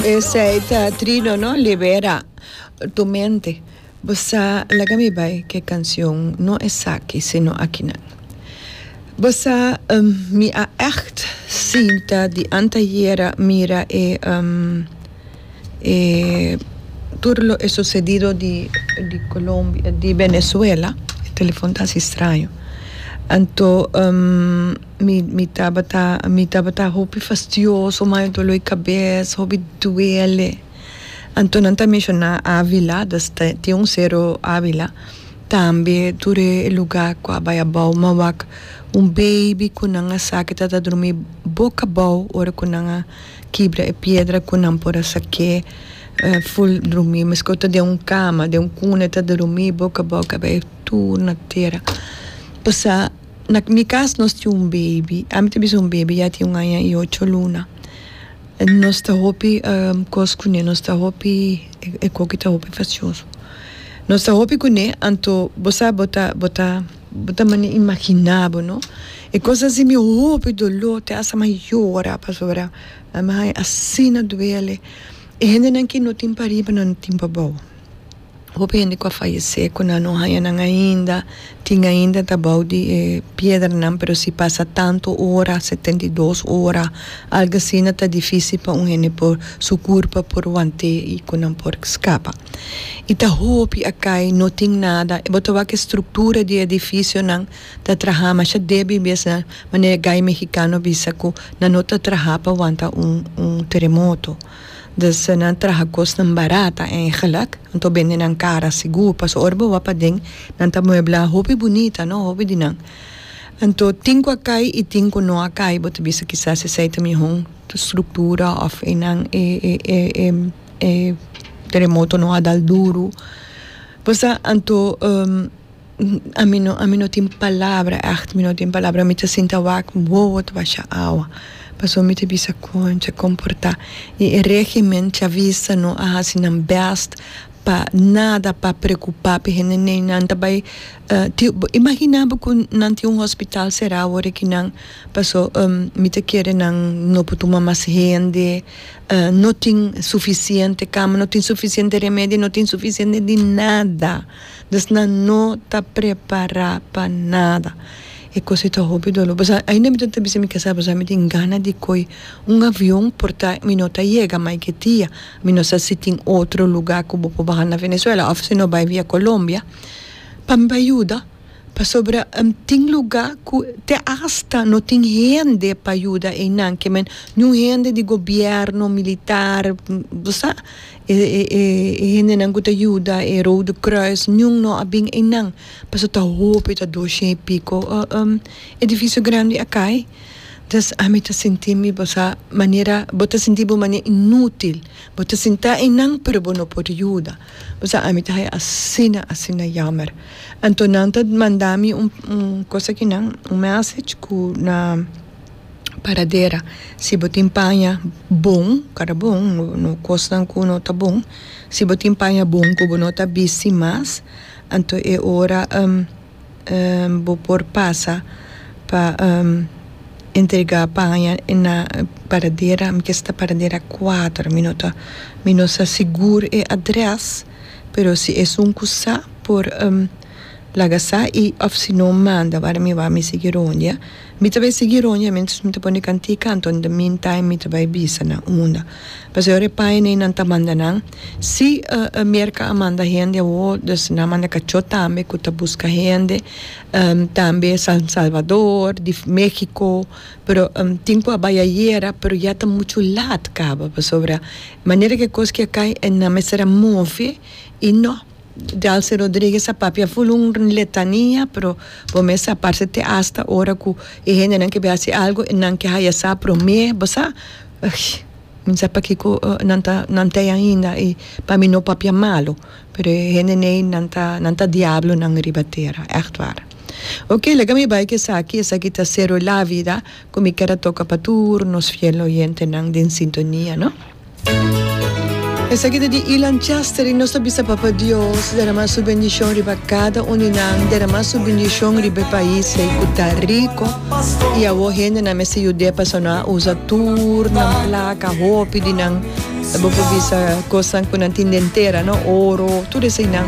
Esei ta trino no libera tu mente bo sa laga mi bai ke canción no esaki sino akinan bo sa mi a echt sinta di antayera mira e e tur lo e sucedido di di Colombia di Venezuela e telefon ta haci straño anto. Mi mi tabata mi tabata hopi fastioso ma anto lo e kabes hopi duele anto nan ta menshona Avila dus ta tin un sero Avila tambe tur e luga ku a bai abou man wak un beibi ku nan a sa ku ta ta drumi boka abou ora ku nan a kibra e piedra ku nan por a sa ke ful drumi miskei ta den un kama den un kune ta drumi boka abou kabes tur na tera pasa. Na mi cas nos tin un baby, ami ta bisa un baby ya tin un aña y ocho luna, nos ta hopi cos cu ne, nos ta hopi e coki ta hopi facioso, nos ta hopi cu ne anto bo sa bo ta bo ta bo ta manda imagina bo no e cos asi mi hopi dolor te hace mi yora pasobra ami asina duele y hendenan que no tin pa riba no tin pa bao. Hopi hende cu a fayecé cu nan no haña nan ainda, tin ainda ta bou di e piedranan, pero si pasa tantu ora, setenta i dos ora, algo asina, ta difisil pa un hende por, su curpa por want'é i cu nan por scapa. I ta hopi a cay, no tin nada. Bo ta wak e structura di e edificionan ta traha masha débil biasnan, manera guy mexicano bisa cu nan no ta traha pa wanta un, un teremoto. Des so nan traha kosnan barata eigenlijk, anto bende nan kara sigur, paso ora bo wak paden nan ta muebla hopi bunita no, hopi di nan. Anto tin ku a kai i tin ku no a kai bo ta bisa kisas esei ta miho struktura of e nan e e e e teremoto no a dal duru, bo sa, anto. Ami no ami no tin palabra echt mi no tin palabra mi ta sinti a wak wowo ta basha awa pasobra mi ta bisa concha con por ta y e regimen chavista no a haci nan best pa nada pa preocupa pe hende n'ey nan ta bay imagina bo cu nan tin un hospital cerado ora que nan paso mi ta kere nan no por tuma mas hende no tin suficiente cama no tin suficiente remedio no tin suficiente di nada. Dus nan no ta prepará pa nada. E kos ei ta hopi doló. Bo sa, ainda mi ta ta bisa mi kasa bo sa mi tin gana di koi un avion por ta mi no ta yega mai ke dia. Mi no sa si tin otro lugá ku bo por baha na Venezuela òf si no bai via Colombia pa mi bai yuda pasobra tin lugá ku te asta no tin hende pa yuda einan ke men niun hende di gobièrnu, militar, bo sa. E hendenan ku ta yuda e Rode Kruis niun no a bin einan paso ta hopi ta doshei i piko edifisio grandi a kai des ami ta sinti mi bo sa manera bo ta sinti bo manera inutil bo ta sinti ta einan pero bo no por yuda bo sa ami ta haya asina asina yammer anto nan ta manda mi un un kos akinan un message ku na. paradera si bo tin paña bon kara bon no kosnan ku no ta bon si bo tin paña bon ku bo no ta bisti mas anto e ora bo por pasa pa entrega paña na paradera mi ke si paradera kuater mi no ta mi no ta sigur e adrès pero si esun ku sa por. Laga sa i of si no manda wara mi wou mi sigui rondia. Mi ta bai sigui rondia mientras mi ta pone kantie kanto in the mean time mi ta bai bisa nan unda. Pasobra ora e paina ei nan ta manda nan si e Merca a manda hende awo dus nan a manda kachot tambe ku ta buska hende tambe San Salvador di Mexico pero tin ku a bai ayera pero ya ta muchu laat kaba pasobra manera ku e kos ke a kai nan mester a move i no Delcy Rodriguez a papia full un letania pero bo mes sa parce te hasta ora cu e hendenan ke bai haci algo nan ke haya sa prome bo sa mi sa pakico nan ta nan tey ainda y pa mi no papia malo pero e hende nei nan ta nan ta diablonan riba tera echt war ok lega mi bai cu esaki esaki ta Cero la vida cu mi ker a toca pa tur nos fiel oyentenan den sintonia no. Esaki ta di Ilan Chester i nos ta bisa Papa Dios derama su bendishon riba kada un di nan, derama su bendishon riba e pais ei ku ta riko i awor hendenan mester yud'é pasobra nan a usa tur nan plaka, hopi di nan bo por bisa kosnan ku nan tin den tera, no, oro, tur eseinan.